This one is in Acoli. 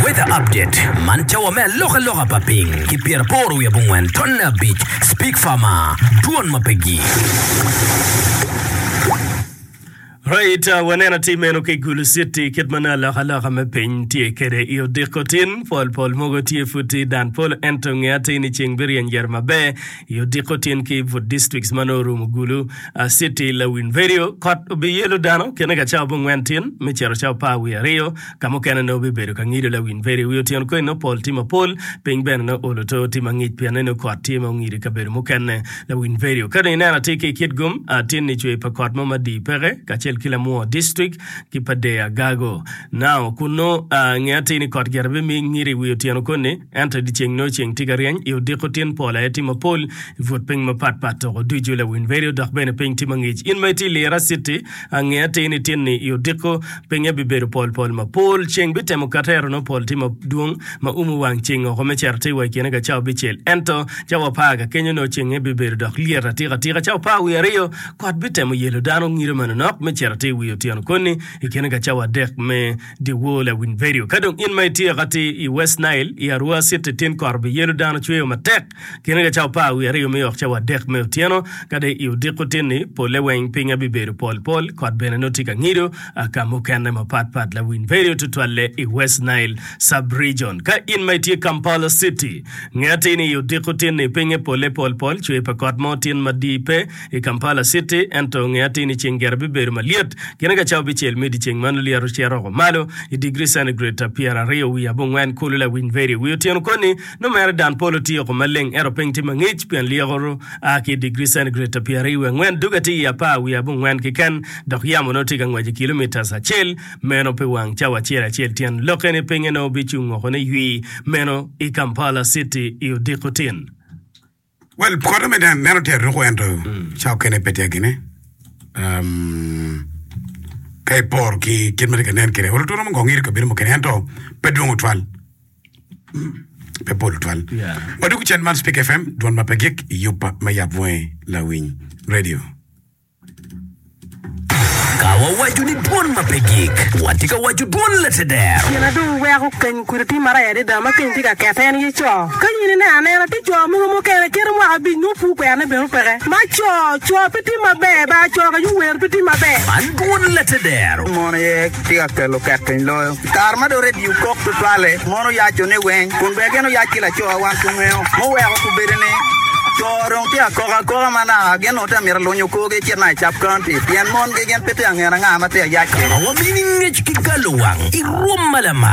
Weather update, Man cawa me alokaloka pa piny ki pyeraboro wiye abongwen tonne abic. Speak Farmer, Dwon ma pe gir. Right, uh, waneno atir meno ki Gulu City kit ma nongo alokaloka me piny tye kwede i odiko tin. Pol pol mogo tye pud tye i dan polo ento nge atir ni ceng biryeny gire maber. I odiko tin ki but districts ma nongo orumo Gulu, City, Lawin Verio, kot obiyelo dano kene ka cawa abongwen tin me cito cawa apar wiye aryo, ka mukene nongo bibedo ka ngido Lawin Verio. Wi otyeno koni nongo pol tye mapol, piny bene nongo olo to tye mangic pien ni nongo kot tye ma ongido i kabedo mukene. Lawin Verio, ka dong ineno atir ki i Kitgum, tin ni cwer pa kot mo madii peke kacel ki Lamwor district ki pa Deya Gago. Now, kunnu nge atir ni kot gire bimie ngido i wi otyeno koni. Ento i dyeceng nongo ceng tye ka ryeny, i odiko tin pol aye tye mapol, i but piny mapat pat toko ducu lawiny bedo dok bene piny tye mangic. In ma itye i Lira Citi, ange atir nitin ni i odiko pinye bibedo pol pol mapol. Ceng bitemo katero nongo pol tye madwong ma umo wang ceng oko me cero atir wa i kine ka cawa bicel. Ento cawa apar ka kenyo nongo ceng aye bibedo dok lyet atika tika. Cawa apar wiye aryo kot bitemo yelo dano ngide manonok me cero atir wiye otyeno koni i kine ka cawa adek me Dyewor lawiny vedio. Ka dong in ma itye kati i West Nile, i Arua City, tin koro biyelo dano cweyo matek kine ka ca opar wiye aryo me ok ca wadek me otyeno. Ka dong i odiko tin-ni, polle weng piny aye bibedo pol pol, kot bene nongo tye ka ngido ka mukene mapat pat. Lawiny vedio tutwalle i West Nile Sub-Region. Ka in ma itye Kampala City, nge atir ni i odiko tin-ni pinye polle pol pol, cwer pa kot mo tin madii pe. i Kampala citi ento nge atir ni ceng gire bibedo malyet gine ka cawa bicel me dyeceng man olyeto ocito oko malo i digri centigrade pyeraryo wiye abongwen kulu lawiny veri wi otyeno koni nongo mere dan polo tye oko maleng ento piny tye mangic pien lyeko ru a ki i digri centigrade pyeraryo wiye angwen dog atir i apar wiye abongwen keken dok yamo nongo tye ka ngwec i kilometres acel meno pi wang cawa acel acel tyen lokke ni pinye nongo bicung oko ni ywii meno i Kampala citi i odiko tin. Well, koto me dan, meno tyer ruko ento ca okene pe tyer gine. Um, ka ipor ki kit ma tye ka nen kire, well, oturo mongong iri kabedo mukene ento pe dwong otwal. Pe pol otwal. Yeah. Wadwogo cen man Speak FM, dwon ma pe gik, yub pa- me yap bwoye, lawiny, radio. Ka wawaco ni dwon ma pe gik, watye ka waco dwon lateder. Gin ma dong weko keny kudi tye maraya adada ma keny tye ka kette en aye co. Ka in ineno anena, tye co mogo mukene keto mwaka abic nongo pur kwerane bene opeke. Ma co, co pe tye maber, bar co ka yo wer pe tye maber. Man dwon lateder. Mon aye tye ka kelo kekeny loyo. Kare ma dong redio kok tutwalle, mon oyacone weng kun bene gin oyac ki lacowa wan kungeo. Muweko kubedo ni, co dong tye akoka akoka ma naka gin onongo tye ka mito ka lunyo korgi gicit naka i Cap County pien mongi gin pe tye ka ngene anga ma tye ka yac-ci. Wabino i ngec ki galowang i rwom ma lamal.